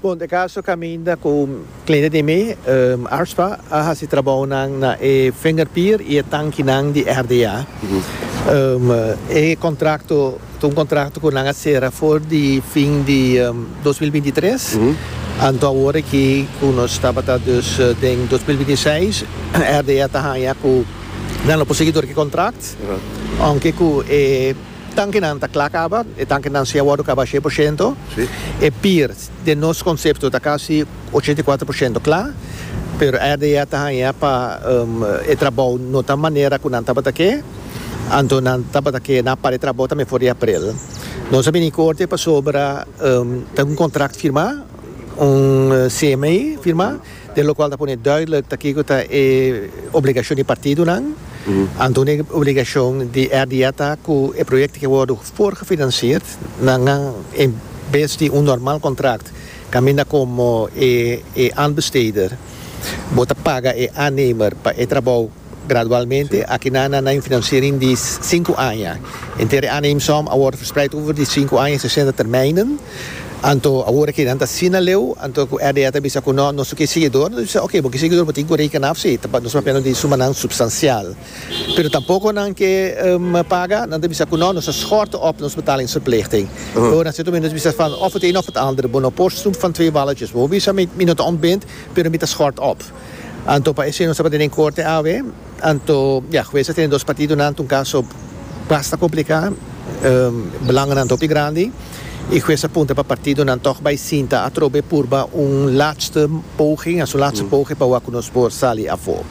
Punto e caso caminda cu cliente di mi, ARSPA, a haci trabounan na e vingerpier y e tankinan di RDA. E contracto ta un contracto cu nan a cera for di fin di dos mil binti tres, anto awor aki cu nos tabata dus den dos mil binti seis, RDA ta haya cu nan lo por sigui dor cu e contract, aunke cu e. Tankinan ta kla kaba, e tankinan si a wòrdu kaba shei por shento. E pir, den nos konsepto ta kasi ochenta i kuater por shento kla, pero RDA ta haña pa e trabou no ta manera ku nan tabata ke, anto nan tabata ke nan a para e trabou tambe for di aprel. Nos a bini korte pasobra ta un kontrakt firmá, un CMI firmá. Den lokual ta pone duidelijk ta kiko ta e obligashon di partidonan. Anto un obligashon di RDA ta ku e proyektonan ke wòrdu voorgefinansierd na ngan en bes di un normal kontrakt kaminda komo e aanbesteder bo ta paga e aannemer pa e trabou Gradualmente akinan nan na un finansiering di sinku aña. Henter e aanneemsom a wòrdu verspreid over di sinku aña en sesenta termijnen. Anto awor aki nan ta asina leu, anto ku RDA ta bisa ku no, nos no ke siguidor, nos bisa oke, bo ke siguidor bo tin ku rekena af si, nos ta papia no di sumanan supstansial. Pero tampoko nan ke paga, nan ta bisa ku no, nos ta schorten op nos betalingsverplichting. Ora na sierto momento nos bisa van of het een of het ander, bo no por snoep van twee balletjes. Bo bisa mi no ta ontbind, pero mi ta schort op. Anto pa esei nos tabata den korte awe, anto ya, hues a tene dos partidonan, ta un kaso basta kompliká, belanganan ta hopi grandi, i hues a punta pa partidonan tòg bai sinta atrobe purba un laatste poging, asu laatste poge pa wak ku nos por sali afó.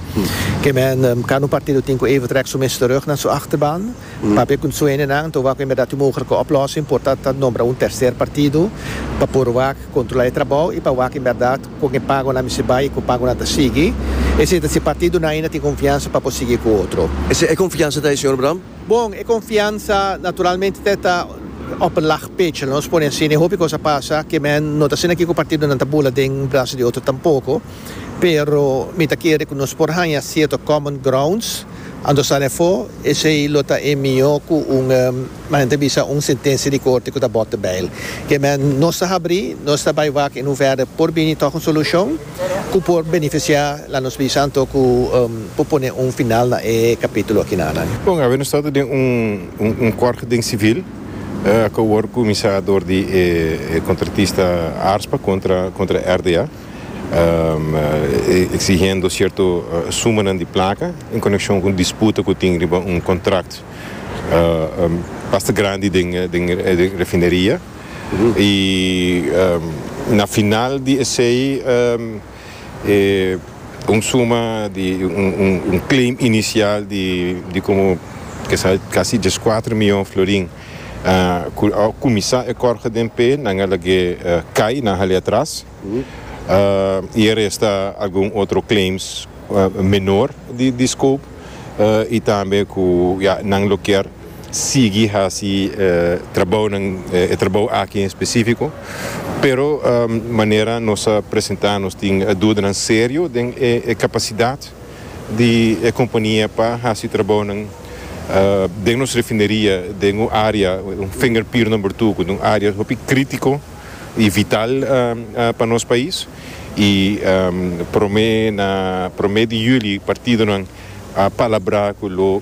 Ke men, kada un partido tin ku even trèk su mes terug na su achterban, papia ku sueñonan, anto wak bèbèrdat e mogelike oplòsing por ta ta nombra un terser partido pa por wak kontrolá e trabou i pa wak bèbèrdat, Con e pagonan mi si bay y cu pagonan ta sigui. Esey ta si partido nan aina tin confiansa pa por sigui cu otro. Esey e confiansa ta e Señor Bram? Bon, e confiansa naturalmente te ta op een laag pitje, lo nos pone asi, ne hopi cos a pasa que men no ta asina aki cu partidonan ta bula den brasa di otro tampoco, pero mi ta kere cu nos por hanja cierto common grounds anto sa lefo, esey lo ta e mijo cu un. Ma hende a bisa un sentensia di korte ku ta bòt beil. Ke men nos ta habrí, nos ta bai wak i nou vèrdè por bini tòg un solushon ku por benefisiá la nos bisa anto ku por pone un final na e kapítulo aki nanan. Bon, awe nos ta ta den un un kòrte den sivil ku a wòrdu kuminsá dor di e kontratista Arspa kontra kontra RDA eksihiendo sierto sumanan di plaka en konekshon ku un disputa ku tin riba un kontrakt. basta grandi den e refineria y na final di esey un suma di un claim inicial di como casi diescuater miyon florin cu a cuminsa e corge den p'e nan a lag'e cay nan hali atras. y e resta algun otro claims menor di scope y tambe cu ya nan lo kier sigui haci trabaonan, e trabao aki en specifico, pero manera nos a presenta nos tin dudanan serio den e capacidad di e compania pa haci trabaonan den nos refineria den un area, un finger pier number two cu ta un area hopi critico. y vital pa nos pais y prome na prome di juli partidonan a palabra cu lo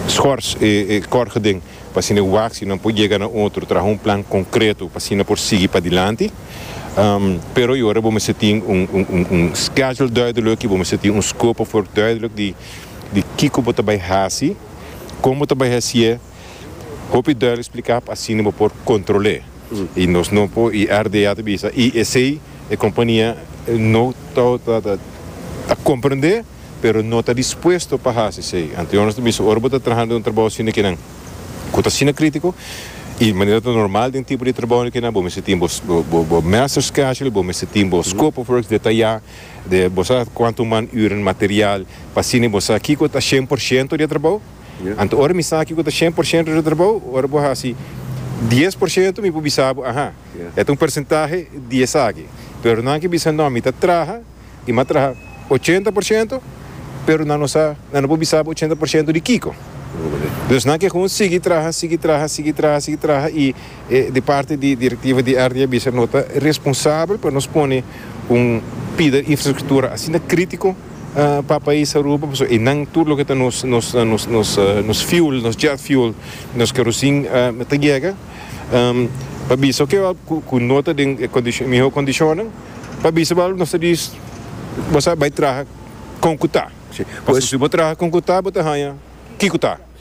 schors e corgeden pa asina e wacsi nan por yega na otro traha un plan concreto pa asina por sigui padilanti pero y ora bo mester tin un schedule duidelijk y bo mester tin un scope of work duidelijk di kico bo ta bay haci con bo ta bay hacié. Hopi duidelijk spliká pa asina bo por kontrol'é. I nos no por i RDA ta bisa i esei e kompania no ta ta komprendé pero no ta dispuesto pa hasi esei. Anto nos ta bisa ora bo ta traha den un trabou asina ke nan ku ta asina kritiko i manera ta normal den tipo di trabou di kinan bo mester tin bo bo master schedule bo mester tin bo scope of works detayá de bo sa kuantu man ürnan material pa asina bo sa kiko ta shen por shento di e trabou. Anto ora mi sa kiko ta shen por shento di trabou, ora bo hasi dies por shento mi por bisa bo ahan, e ta un persentahe di esaki. Pero nan ke bisa no, mi ta traha i mi a traha ochenta por shento, pero nan no sa, nan no por bisa bo ochenta por shento di kiko. Dus nan ke houn sigui traha, sigui traha, sigui traha, sigui traha i. E di parti di direktiva di RTI a bisa, No ta responsabel pa nos pone un pida infrastruktura asina kritiko pa pais Aruba, pasobra einan tur loke ta nos nos fuel, nos jet fuel, nos kerosin ta yega. Pa bisa oke al ku no ta den e miho kondishonnan, pa bisa bo al nos ta dis, Bo sa bai traha kon ku ta. Pasobra si bo traha kon ku ta bo ta haña kiko ta.